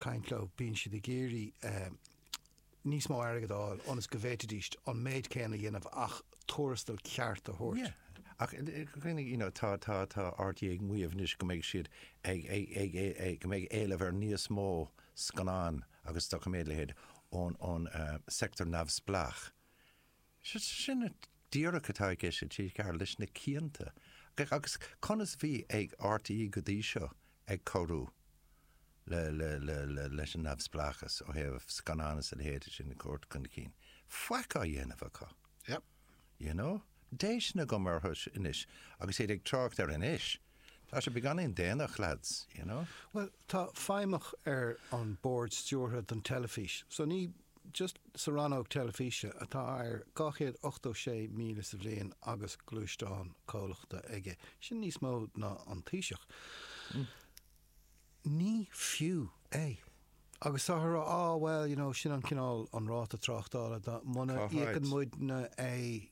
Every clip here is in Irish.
caint leo, bíonn siad ag iarraidh níos mó airgead a fháil ionas go bhféadfadh siad an méid céanna a dhéanamh ach tuarastal ceart a thabhairt. Yeah. Ach you know, tá RTÉ ag maíomh anois go mbeidh siad ag, ag, ag, go mbeidh éileamh ar níos mó scannán agus doiciméad, a leithéid, ón sector neamhspleách. Sin é díreach atá i gceist sa tír seo leis na cianta. Agus conas a bhí RTÉ go dtí seo ag cabhrú leis an neamhspleáchas ó thaobh scannán is a leithéid sin a thabhairt chun cinn? Faic á dhéanamh acu. Yep. You know? Déistin a chur orm anois agus iad ag trácht ar anois. Tá sé beagáinín déanach, lads, you know? Bhuel, tá feidhmeach ar an Bord Stiúrtha don teilifís, so ní just sa Rannóg Teilifíse atá ar 286,000 sa bhliain agus gluaisteán comhlachta aige, sin níos mó ná an Taoiseach. Ní fiú é. Agus táthar á rá, bhuel, you know, sin an cineál, an ráta tráchtála, muna íocann muidne é,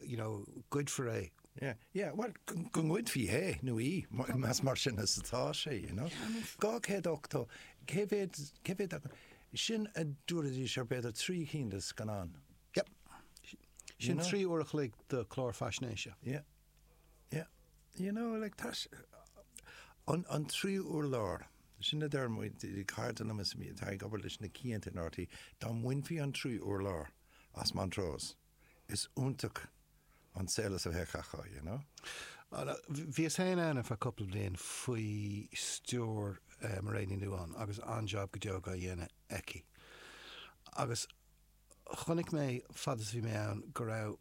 you know, goidfear é. Yeah, yeah, well, go ngoidfear é nó í, más mar sin is atá sé, you know. 280, cé mhéad, cé mhéad acu? Sin a dúraidís ar b'fhéidir trí cinn de scannáin. Yep. Sin trí uair a chloig de clár faisnéise. Yeah, yeah. You know, like, tá sé, an, an tríú urlár, sin a deir muid, cairde liom is atá ag obair leis na cianta in RTÉ, dá mbainfí an tríú urlár as Montrose, is iontach an saol a bheadh acu, you know. Bhíos féin ann ar feadh cupla bliain faoi stiúir Mairéad Ní Nuadháin agus an-jab go deo á dhéanamh aici. Agus chonaic mé, fad is a bhí mé ann, go raibh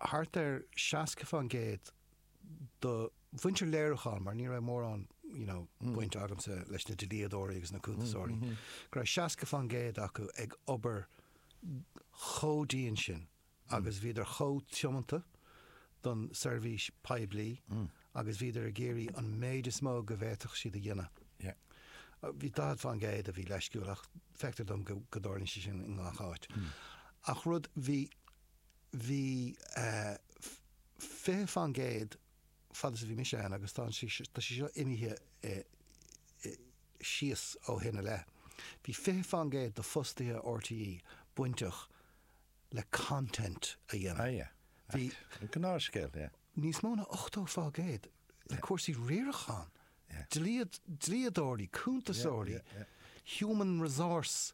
thart ar seasca fán gcéad, do mhuintir léiriúcháin, mar ní raibh mórán, you know, baint agamsa leis na dlíodóirí agus na cuntasóirí, go raibh seasca fán gcéad acu ag obair chomh dian sin agus bhíodar chomh tiomanta don seirbhís poiblí agus bhíodar ag iarraidh an méid is mó go bhféadfadh siad a dhéanamh. Yeah. Bhí daichead fán gcéad a bhí leisciúil ach feictear dom go dtarlaíonn sé sin i ngach áit. Ach rud, bhí, bhí fiche fán gcéad fad is a bhí mise ann agus tá sé tá sé seo imithe síos ó shin i leith, bhí fiche fán gcéad de fostaithe RTÉ bainteach le content a dhéanamh. Ah yeah. Bhí. An gnáthscéal, yeah. Níos mó ná ochtó fá gcéad le cúrsaí riaracháin, dlíodóirí, cuntasóirí, human resource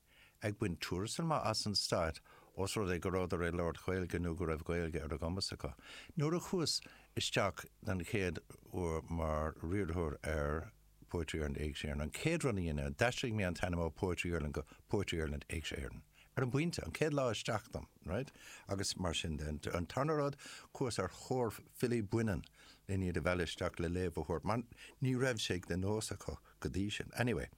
ag baint tuarastail maith as an Stat os rud é go rabhadar ag labhairt Gaeilge nó go raibh Gaeilge ar a gcumas acu. Nuair a chuas isteach don chéad uair mar riarthóir ar Poetry Ireland Éigse Éireann, an chéad rud a dhein mé, d'aistrigh mé an t-ainm ó Poetry Ireland go Poetry Ireland Éigse Éireann. Ar an bpointe, an chéad lá isteach dom, right? Agus mar sin de. An tarna rud, chuas ar thóir filí baineann len iad a mhealladh isteach le léamh a thabhairt mar ní raibh sé de nós acu go dtí sin. Anyway.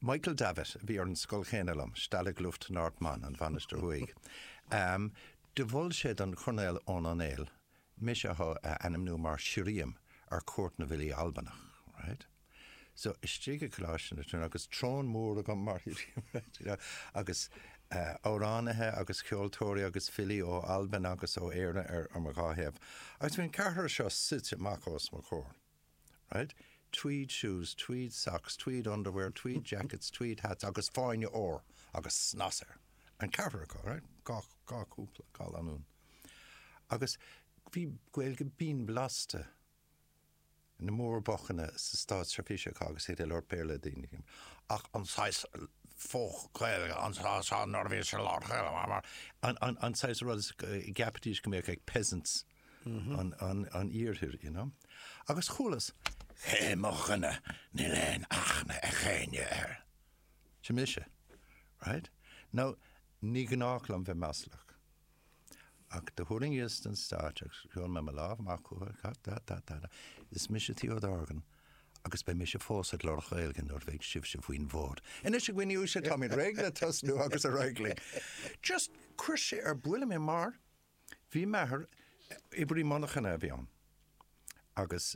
Michael Davitt, a bhí ar an scoil chéanna liom, Stalag Luft North Mon, an Mhainistir Thuaidh, ehm, do mhol sé don Choirnéal Eoghan Ó Néill mise a ainmniú mar shirriam ar Chuairt na bhFilí Albanach, right. So, istigh i gColáiste na Tríonóide, agus throne mór agam mar shirriam, right, you know, agus eh, amhránaithe agus ceoltóirí agus filí ó Albain agus ó Éirinn ar mo dhá thaobh, agus bhí an ceathrar seo suite amach os mo chomhair. right? Tweed shoes, tweed socks, tweed underwear, tweed jackets, tweed hats agus fáinne ór agus snas air. An ceathrar acu, right? Dhá, dhá chúpla, dhá lanúin. Agus bhí Gaeilge binn blasta na mór-bhocanna sa státseirbhís acu agus iad ag labhairt Béarla le daoine. Ach an saghas faux Gaeilge, an saghas nuair a bhíodh siad ag labhairt Ghaeilge, an saghas rud a gceapfaidís go mbeadh ag peasants. an Iarthair you know. Agus chualas cé hé mo dhuine níl aon aithne ag éinne air. Sin mise right. Now ní gnách liom bheith maslach ach do thuirlingíos den stáitse agus sheol mé mo lámh amach chucu ta ta ta ta ta is mise Theo Dorgan agus beidh mise fós ag labhairt Ghaeilge nuair a bheidh sibhse faoin bhfód. Anois a dhaoine uaisle táimid réidh le tosnú agus ar aghaidh linn. Just cuir sé ar buile mé mar Bhí m'athair, oibrí monarchan a bhí ann, agus.